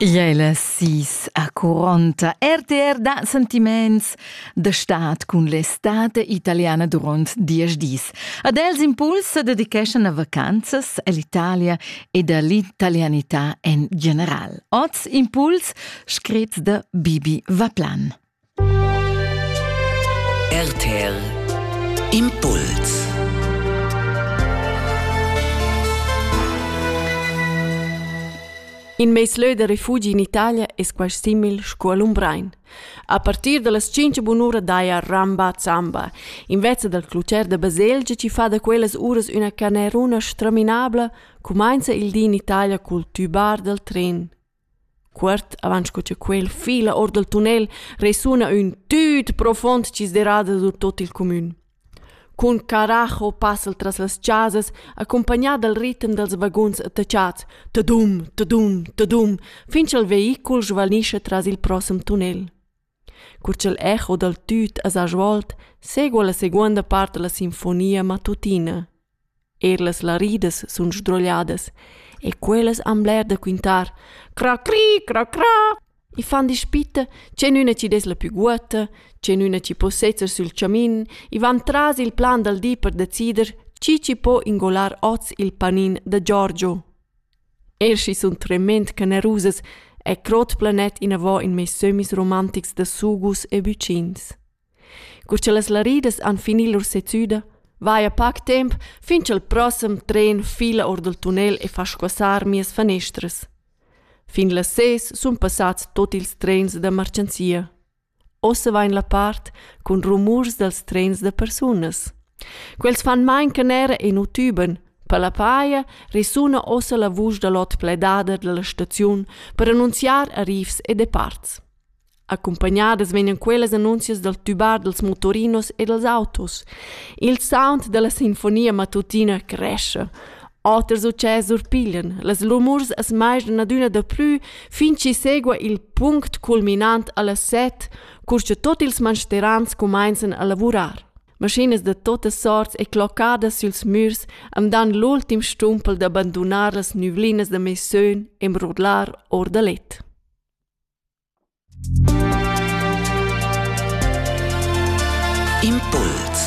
Igl è la sis accuronta RTR da sentiments da stat cun l'estate italiana durant diesch dis. Ad els impuls se dedicheschan a vacanzas all'Italia ed all'italianità en general. Oz impuls scrit da Bibi Vaplan. RTL Impuls In mez leu da refugi in Italia es quasi simil sco a Lumbrein. A partir da las tschinch bunura daja Ramba Zamba, invece dal clucher da baselgia chi fa da quellas uras üna caneruna straminabla, cumainza il di in Italia cul tübar dal tren. Cuort avant sco cha quel fila or dal tunnel resuna ün tüt profond dschisderada sur tuot il cumün. Cun caracho passa'l tras las chasas, accumpagnà dal ritem dals vaguns attachats, tadum, tadum, tadum, fin cha'l veicul svanischa tras il prossem tunnel. Cur ch'il echo dal tut as ha svolt, segua la seguonda part da la sinfonia mattutina. Eir las laridas sun sdrogliadas e quellas han bler da quintar. Cra cri, cra cra! I fan dispitta chenüna chi dess la pü guotta, chenüna chi po sezzer sül chamin, i van tras il plan dal di per decider chi chi po ingolar hoz il panin da Giorgio. Er schi sun tremend generusas è crot planet inavò in meis sömmis romantics da sugus e bucins. Cur cha las laridas han fini lur sezüda, vaja pac temp fin cha'l prossem tren fila or dal tunnel e fa squassar mias fanestras. Fin las ses sun passats tot ils trens da marchanzia. Ossa vain la part cun rumurs dals trens da persunas. Quels fan main canera e nu tüban. Per la paja resuna ossa la vusch da l'ot pledada dalla staziun per annunziar arrivs e departs. Accumpagnadas vegnan quellas annunzias dal tübar dals motorinos e dals autos. Il sound dalla sinfonia matutina cresce. Oters utschès surpiglian las rumurs as maisdan adüna daplü fin chi segua il punct culminant a las set, cur cha tot ils mansterans cumainzan a lavurar. Maschinas da totas sorts e cloccadas süls mürs am dan l'ultim stumpel da bandunar las nüvlinas da meis sön e mrudlar our da let. Impuls